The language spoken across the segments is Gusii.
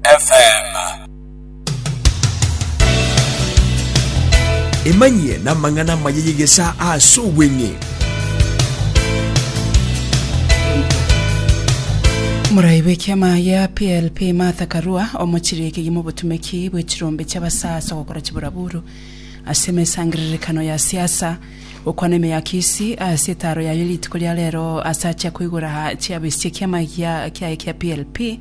FM. Emanyie namang'ana amaya y'egesa ase obweng'e. Morai bw'ekiama ya PLP Martha Karua omochirie ekegima obotumeki bwe chirombe chiabasa ase ogokora chiburaburu ase emesangererekano ya siasa gokwana emeyakisi ase etaro yaye rituko ria rero ase achia koigora chiabesi chi'ekiama gia kiaye kia PLP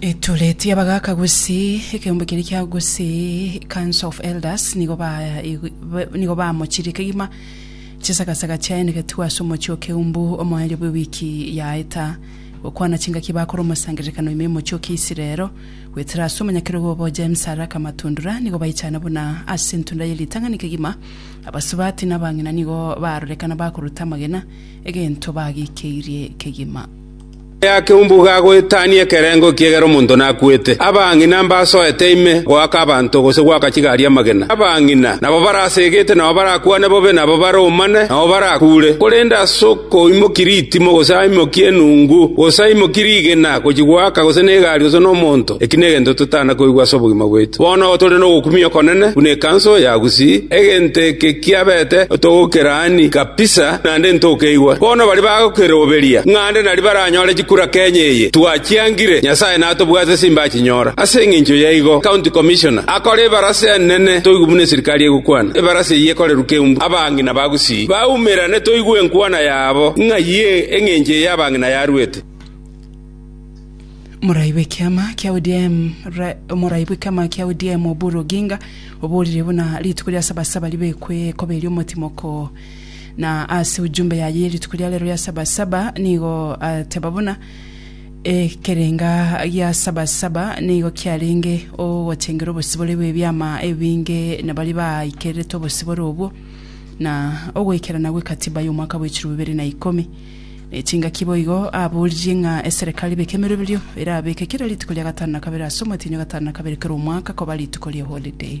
Etoreti y'abagaaka gusii, ekeombe keria kia gusii, Council of Elders, nigo ba nigo bamochirie kegima chisagasaga chiaye na getuo ase omochie o keumbu omoerio bw'ewiki yaeta, gokwana chingaki bakore omosangererekano ime y'omochie o Kiisiraelo, goetera ase omonyakerogo obo James Araka Matundura, nigo baichana buna ase entunda ye ritang'ani kegima, abasubati na abang'ina nigo barorekana bakoruta amagena, egento bagiikeirie kegima. Aya keumbuga agoetania ekerengo ekiagera omonto nakwete. Abang'ina mbasoete ime goaka abanto gose goaka chigari amagena. Abang'ina nabo barasegete, nao barakwane bobe, nabo baromane, nao barakuure. Korende ase okoimokia ritimo, gose aimokie enungu, gose aimokie rigena gochia goaka gose negari gose nomonto, eki negento totana koigwa ase obogima bwaito. Bono igo tore nogokumia okonene buna ekanso ya Gusii. Egento eke kiabete otogokeraani kabisa. naende ntokeigwa. Bono baria bagokeroberia ng'a nde naria baranyore chikura Kenya eye twachiangire, Nyasae natobwate simbe achinyora. Ase engencho yaigo, County Commissioner akore ebarasa enene toigwe buna eserikari egokwana. Ebarasa eyio ekorerwe Keumbu. Abang'ina ba Gusii baumerane toigwe enkwana yabo ng'ai engencho eye abang'ina yaruete. Morai bw'ekiama kia ODM Ra- Morai bw'ekiama kia ODM Oburu Oginga oborire buna rituko ria Sabasaba ribekwekoberi omotimoko Na ase ujumbe yaye ye rituko ria rero ya Sabasaba nigo ateba buna, Ekerenga gia Sabasaba nigo kiarenge ogotengera obosibore bw'ebiama ebinge na baria baaikererete obosibore obwo, na ogoikerana gwe Katiba y'omwaka bwechirwe bibere na ikomi. Nechingaki boigo aboririe ng'a eserekari beke emeroberio erabeke kera rituko ria gatano na kabere ase omwetienyi o gatano na kabere kera omwaka koba rituko rie holiday.